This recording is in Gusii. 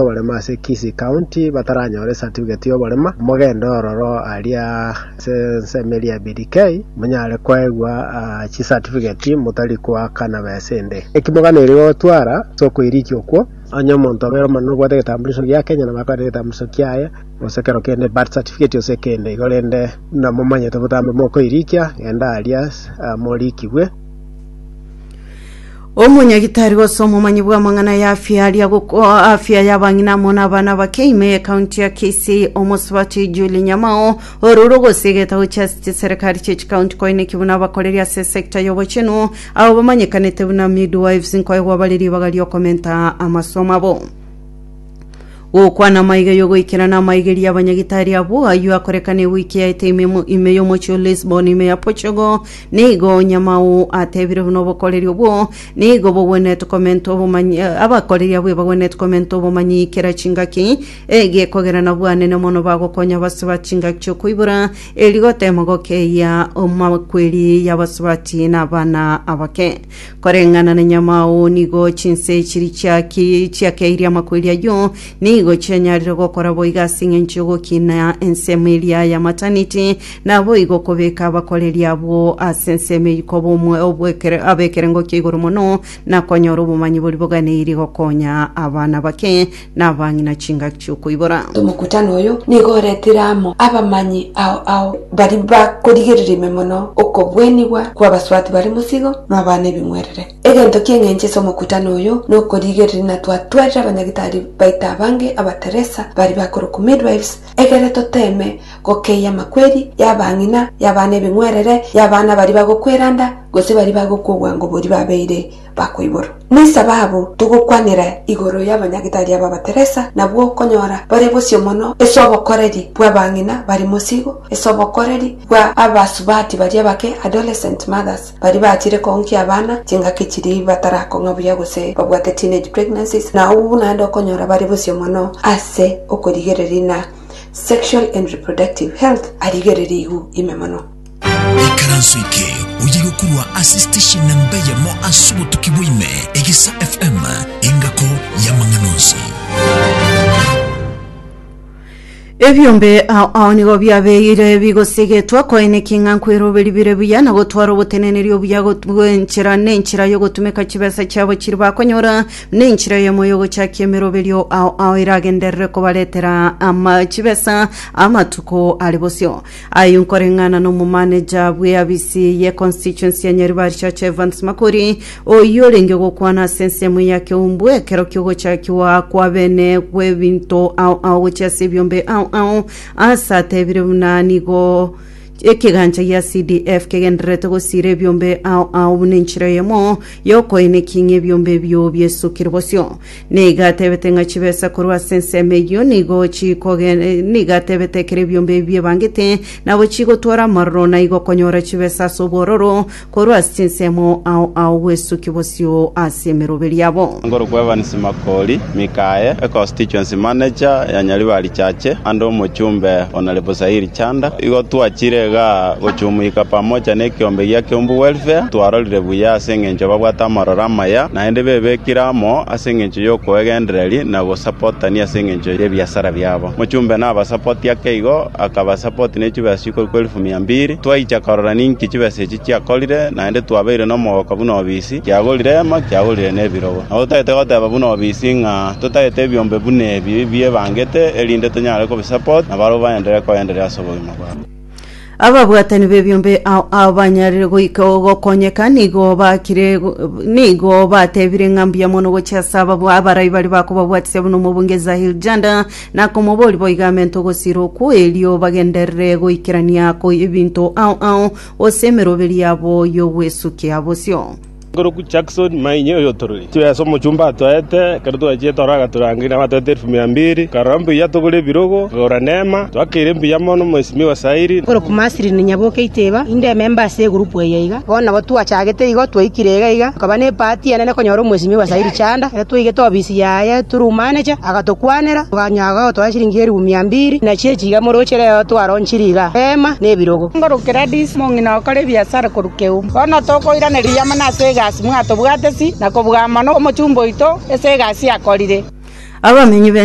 Abarema ase Kisii County bataranyore certificate y'oborema, mogende ororo aria ase ensemo eria BDK monyare koegwa chi certificate motari koaka na besa ende. Eki moganeire gotwara ase okoirikia okwo, onye omonto obe ore omonene obwate egetambulisho gia Kenya nabo akore egetambulisho kiaye gose kero kende birth certificate gose ekende igo rende buna momanyete botambe mokoirikia genda aria moriikigwe. Omonyagitari gose omomanyi bw'amang'ana y'afia aria gokoa afia y'abang'ina amo n'abana bake ime y'ekaunti ya Kisii omosubati Julie Nyamao orure ogosia egetabu chia chiserikari chia chikaunti koineki buna abakoreri ase esekta y'obochenu abo bamanyekanete buna midwives nkoegwa bare ribaga ri'okomenta amasomo abo. Gokwana amaiga y'ogoikerana amaigeria abanyagitari abwo ayio akorekana ewiki yaete ime mo- ime y'omochi o Lisbon ime ya Portugal. Nigo Nyamao atebire buna obokoreri obwo nigo bogwenerete komenta obomanyi eh, abakoreri abwo ebagwenerete komenta obomanyi kera chingaki egekogera nabwo anene mono bagokonya abasiba chingaki chi'okoibora eri gotema gokeyia omakweri y'abasubati na abana abake. Koreng'ana na nyamao nigo chinse chiri chiaki- chiakeirie amakweri ayio, nigo chianyarire gokora boigo ase engencho y'ogokina ensemo eria ya mataniti, naboigo okobeka abakoreri abwo ase ensemo eyio koba omwe- obwekere- ab'ekerengo kia igoro mono, na konyora obomanyi boria boganeirie gokonya abana bake, nabang'ina chingaki chi'okoibora. Omokutano oyo nigo oretire amo abamanyi ao ao baria bakorigereria ime mono okobwenigwa kw'abaswaati bare mosigo na abana ebing'werere. Egento ki'eng'encho ase omokutano oyo nokorigereria na twatwarire abanyagitari baito abange Abateresa baria bakorokwa midwives egere toteeme gokeyia amakweri y'abang'ina, y'abana ebing'werere, y'abana baria bagokwera nda, gose baria bagokwa obwango boria babeire bakoiborwa. Nesababu togokwanera igoro y'abanyagetari aba Bateresa nabwo okonyora bare bosio mono ase obokoreri bw'abang'ina bari mosigo, ase obokoreri bwa abasubati baria bake, adolescent mothers, baria bachire koonkia abana chingaki chiria batarakong'a buya gose babwate teenage pregnancies, na abwo naende okonyora bare bosio mono ase okorigereria ng'a sexual and reproductive health arigereria igu ime mono. Ikaranso eke oye gokorwa ase station na mbeyemo ase obotuki bwaime Egisa FM engako y'amang'ana onsi. Ebiombe ao ao nigo biabeire bigosegetwa koeneki ng'a nkweroberi bire buya na gotwara oboteneneri obuya got- bw'enchera nenchera y'ogotumeka chibesa chiabo chiri bakonyora nenchera eyemo y'ogochakia emeroberio ao ao eragenderere kobaretera ama chibesa amatuko are bosio Ayio nkoreng'ana nomomaneja bw'eabisi ye constituency ya Nyaribarishacha Evans Makori, oyio orenge gokwana ase ensemo ya Keumbu ekero kiogochakiwa kwa bene bw'ebinto ao ao gochia ase ebiombe ao ao, ase atebire buna nigo ekegancha gia CDF kegendererete gosiira ebiombe ao ao buna enchera eyemo yokoenekia ng'a ebiombe ebio biesukire bosio. Nigo atebete ng'a chibesa korwa ase ensemo eyio nigo chikogen- eh, nigo atebete ekero ebiombe ebi biebangete, nabo chigotwara amororo, na igo okonyora chibesa ase obwororo korwa ase chinsemo ao ao gwesuki bosio ase emeroberi yabo. Ngorokwa Evans Makori Mikae, e Constituency Manager ya Nyaribari Chache and Omochumbe Honourable Sairi Chanda, igo twachire iga gochumuika pamoja na ekiombe gia Kiombu Welfare, twarorire buya ase eng'encho babwate amororo amaya, naende bebekire amo ase engencho y'okoegendereria na gosapotania ase engencho y'ebiasara biabo. Mochumbe nabasapoti ake igo, akabasapoti ne chibesa chikorwa kwa elifu mia mbiri. Twaicha korora ninki chibesa echi chiakorire, naende twabeire nomogoka buna obisi, kiagorire eema, kiagorire nebirogo. Nabo totagete goteba buna obisi ng'a totagete ebiombe buna ebi bibebangete, erinde tonyare kobisapoti, na barabwo baenderere koenderera ase obogima bwabo. Ababwatani b'ebiombe ao abanyarire goika gokonyeka nigo bakire nigo batebire ng'a mbuya mono gochia ase ababwa abarai baria bakobabwatisia buna omobunge Zahir Janda na komobori boiga ame ntogosira okwo erio bagenderere goikerania ko ebinto ao ao gose emeroberi yabo y'ogwesukia bosio. Nkoroku Jackson Mainyi oyotoroire chire ase omochumba atoete, ekero twachiete ororo agatorangeria nabo atoete elfu mia mbiri. Nkarora mbuya togore ebirogo, nkagora neema, twakeire mbuya mono Mheshimiwa Sairi. Nkoroku Maslin Nyaboke Itiba, inde ememba ase egurupu eye iga. Bono nabo twachagete igo, twaikire iga iga, nkaba ne epaati enene konyora Omheshimiwa Sairi Chanda. Ekero twaigete obisi yaye through manager, agatokuanera, tokanyora agotoa chiringi elfu mia mbiri, buna chichi iga moroche reo twaronchire iga, eema na ebirogo. Nkoroku Gladys Mong'ina okora ebiasara korwa. keu. Bono tokoiranereria amo nase egasi mwatobwateti, na kobua amo nomochumba oito ase egasi akorire. Abamenyi b'ense.